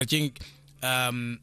keng um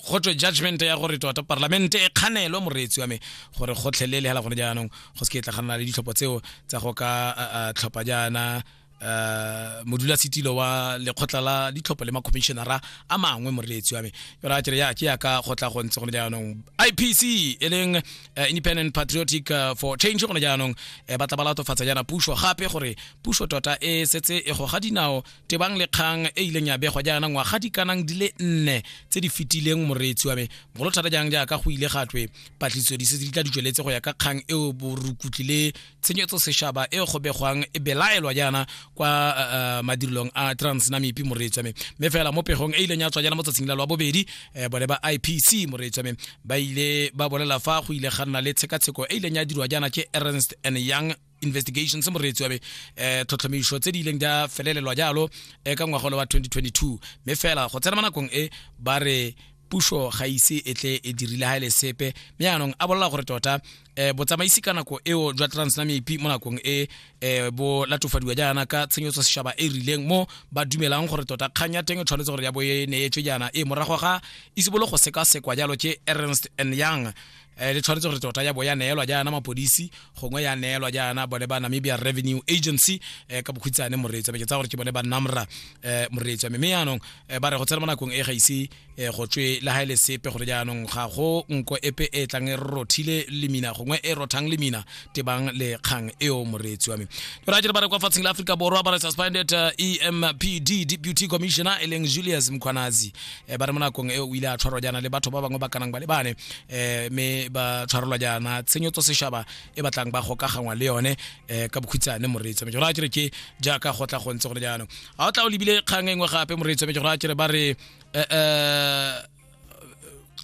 go twe judgment ya gore tota parlamente e kganelwe moreetsi wa me gore gotlhelele hela gone jaanong go se ke tla ganana le ditlhopho tseo tsa go ka tlhopha jaana uh modula setilo wa lekgotla la ditlhopho le macommissionera a mangwe moreetsi wa me yona a kere ya ke ya ka go tla go ntse gone jaanong ipc e leng uh, independent patriotic uh, for change gone jaanong uh, ba tla ba latofatsa jaana puso gape gore puso tota e setse e goga dinao tebang le kgang e ileng ya begwa jaana ngwaga di kanang di le nne tse di fetileng moreetsi wa me bogolo thata jang jaaka go ile ga twe patlisiso di setse di tla di tsweletse go ya ka kgang eo borukutli le tshenyetso sešaba e go begwang e belaelwa jaana kwa uh, uh, madirelong a transnamipi moreetsi wa me mme fela mo pegong e ileng ya tswa jaana mo tsatsing la lwa bobedi eh, bone ba ipc moreetsi wa me ba ile ba bolela fa go ile ga nna le tshekatsheko e ileng ya dirwa jaana ke ernst and young investigations moreetsi wa be eh tlhotlhomišo tse di ileng di a felelelwa jalo eh, ka ngwagolo wa 2022 mme fela go tsena mo nakong e ba re puso ga ise e tle e dirile ga e le sepe mme yaanong a bolela gore tota eh botsamaisi ka nako eo jwa transnamepi mo nakong e eh bo latofadiwa jaana ka tshenyetso seshaba e rileng mo ba dumelang gore tota kgang ya teng e tshwanetse gore ya bo e neetswe jaana e morago ga isibolo go sekasekwa jalo ke ernst and young eh, le tshwanetse gore tota ya bo ya neelwa jaana mapodisi gongwe ya neelwa jaana bone ba namibia revenue agency eh, ka bokhutshane moreetsi ke tsa gore ke bone ba namra eh, moreetsi wa mme yaanong eh, ba re go tsena mo nakong e ga ise eh, go tswe le ga ele sepe gore jaanong ga go nko epe e tlang e rothile lemina gongwe e rothang lemina tebang le kgang eo moreetsi wa me jora jere ba re kwa fatsheng la aforika borwa ba re suspended uh, empd deputy commissioner e leng julius mkhwanazi eh, ba re mo nakong eo o ile a tshwarwa jaana le batho ba bangwe ba kanang ba le bane eh, mme ba tshwarelwa jaana tshenyetso sešaba e batlang ba gokagangwa le yone eh, ka bokhutshane moreetsi wa me jora jere ke jaaka go tla go ntse gone jaanong ga o tla o lebile kgang e nngwe gape moreetsi wa me jora jere ba re eh, eh,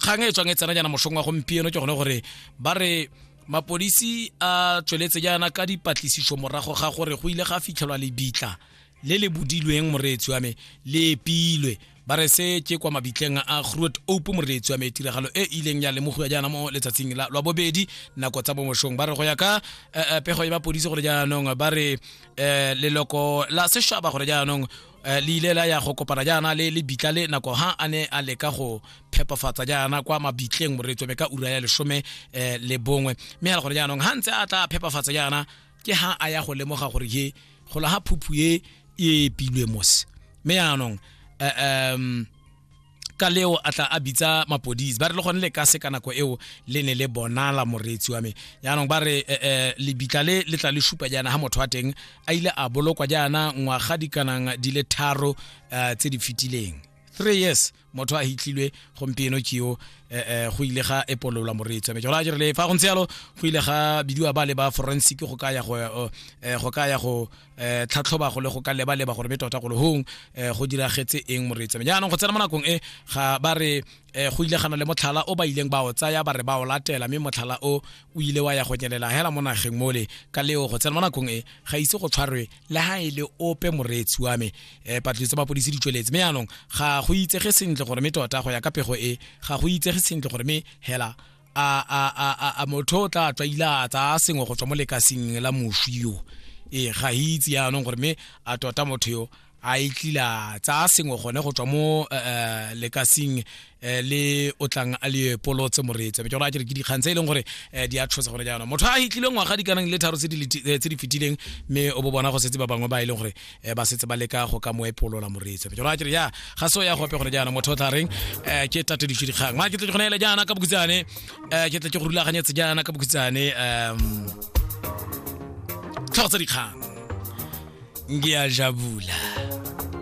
kgang e tswang e tsena jaana mosong wa gompieno ke gone gore ba re mapodisi a tsweletse jaana ka dipatlisiso morago ga gore go ile ga fitlhelwa lebitla le le bodilweng moreetsi wa me le epilwe ba re se ke kwa mabitleng a groot ope moreetsi wa me tiragalo e ileng ya lemogiwa jaana mo letsatsing la lwa bobedi nako tsa bomosong ba re go ya ka eh, eh, pego ya mapodisi gore jaanong ba re eh, leloko la sešaba gore jaanong Eh, le ile la ya go kopana jaana le le bitla le nako ha a ne a leka go phepafatsa jaana kwa mabitleng moreetsome ka ura ya lesome um le bongwe mme a le gore jaanong ha ntse a tla phepafatsa jaana ke ha a ya go lemoga gore ye gola ga phuphu e e epilwe mose mme jaanong um ka leo a tla a bitsa mapodisi ba re le gone le ka se ka nako eo le ne le bonala moreetsi wa me jaanong ba re eh, eh, lebitla le le tla le supa jaana ga motho wa teng a ile a bolokwa jaana ngwaga di kanang di le tharo eh, tse di fetileng three years motho a hitlilwe gompieno keo eh, go ile ga epololwa moreetsi wa me jalo a jere le fa go ntse yalo go ile ga bidiwa ba le ba forensic go ka ya go go ka ya go eh tlhatlhoba go le go ka leba leba gore be tota go le hong eh go diragetse eng moreetsa ja anong go tsena mo nakong e ga ba re eh go ile gana le motlhala o ba ileng ba o tsaya ba re ba o latela mme motlhala o o ile wa ya go nyelela hela mo nageng mole ka leo go tsena mo nakong e ga ise go tshwarwe le ha e le ope moreetsi wa me eh patlitse ba polisi di tsweletse mme anong ga go itsege sentle gore me tota go ya ka pego e ga go itsege sentle gore me hela a motho o tla tswa ile a tsaya sengwe go tswa mo lekasing la moswi yo ee ga itse yaanong gore mme a tota motho yo a e tlila tsaya sengwe gone go tswa mo eh, eh, lekasing eh, le o tlang a le polotse moreetsa be jalo a kere ke dikgang tse e leng gore di a tshosa gore jaanong motho a hitlilwe ngwaga di kanang le tharo tse di fetileng mme o bo bona go setse ba bangwe ba e leng gore eh, ba setse ba leka go ka mo epolola moreetsi jalo a kere ya ga se o ya gope gone jaana motho o tla reng um ke tateditse dikgang mara ke tle ke gone ele jaana ka bokutsane um eh, ke tle ke go rulaganyetse jaana ka bokutsane um tlhogo tsa dikgang ngiyajabula